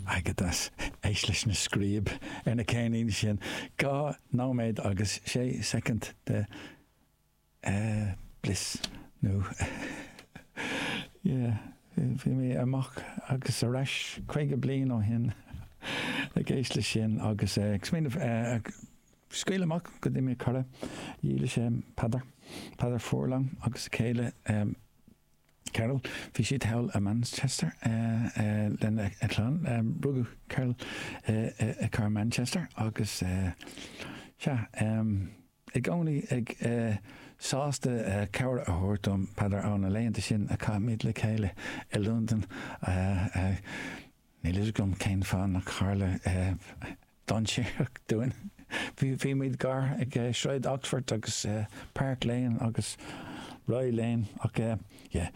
Airgeadas Éist leis na scríob ar na ceirníní sin, dhá nóiméad agus sé soicind de bhliss nó yeah, bhí mé amach agus ar ais caoga bliain ó shin ag éist leis sin agus ag smaoineamh scaoil amach go dtí mo chara dílis Peadar Peadar Furlong agus céile Carroll. Bhí siad thall i Manchester lena chlann. Rugadh Carroll i gcathair Manchester agus sea, i gcónaí sásta cabhair a thabhairt dom, Peadar, ó na laethanta sin a chaith muid le chéile i Londain. Níl fhios agam cén fáth nach tharla dainséaracht dúinn. Bhí muid gar ag Sráid Oxford agus Park Lane agus Rye Lane ach yeah.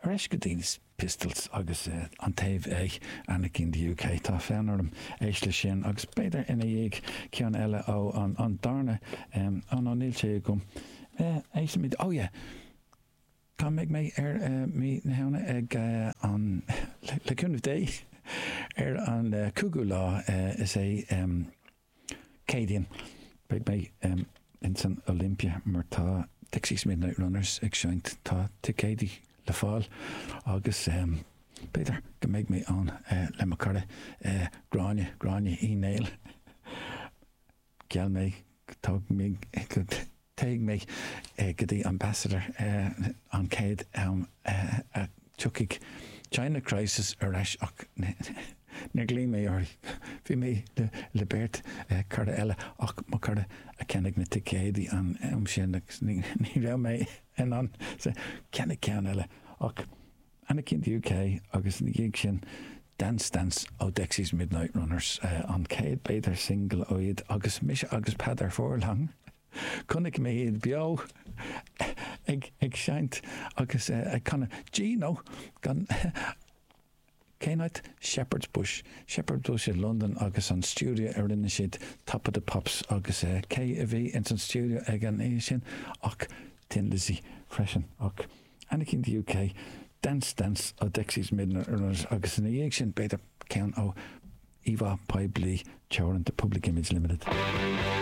Ar ais go dtí na Pistols agus an taobh ag Anarchy in the UK. Tá fonn orm éist leis sin agus b'fhéidir ina dhiaidh ceann eile ó an darna, oh no níl sé agam. Éistimid, oh yeah. Beidh mé ar mí na Shamhna ag an, le cúnamh Dé, ar an cúigiú lá, is é Céadaoin, beidh mé in san Olympia mar tá Dexys Midnight Runners ag seinnt, tá ticéidí le fáil agus b'fhéidir go mbeidh mé ann le mo cara Gráinne, Gráinne Uí Néill. Gheall mé go dtéadh mé go dtí Ambassador an chéad am a dtiocfaidh China Crisis ar ais ach níor ghlaoigh mé uirthi. Bhí mé le beirt chara eile ach mo chara a cheannaigh na ticéidí an am sin agus ní raibh mé in ann ceannach ceann eile. Anarchy in the UK agus ina dhiaidh sin Dance Stance ó Dexys Midnight Runners, an chéad, b'fhéidir, singil ó iad agus mise agus Peadar Furlong, chonaic mé iad beo ag seinnt agus ag canadh Do you know gan cén áit? Shepherd's Bush, Shepherd's Bush i Londain agus an stiúideo a rinne siad Top of the Pops agus cé a bhí ins an stiúideo ag an oíche sin ach Thin Lizzy freisin ach. Anarchy in the UK, Dance Stance ó Dexys Midnight Runners agus ina dhiaidh sin b'fhéidir ceann ó íomhá poiblí teoranta Public Image Limited.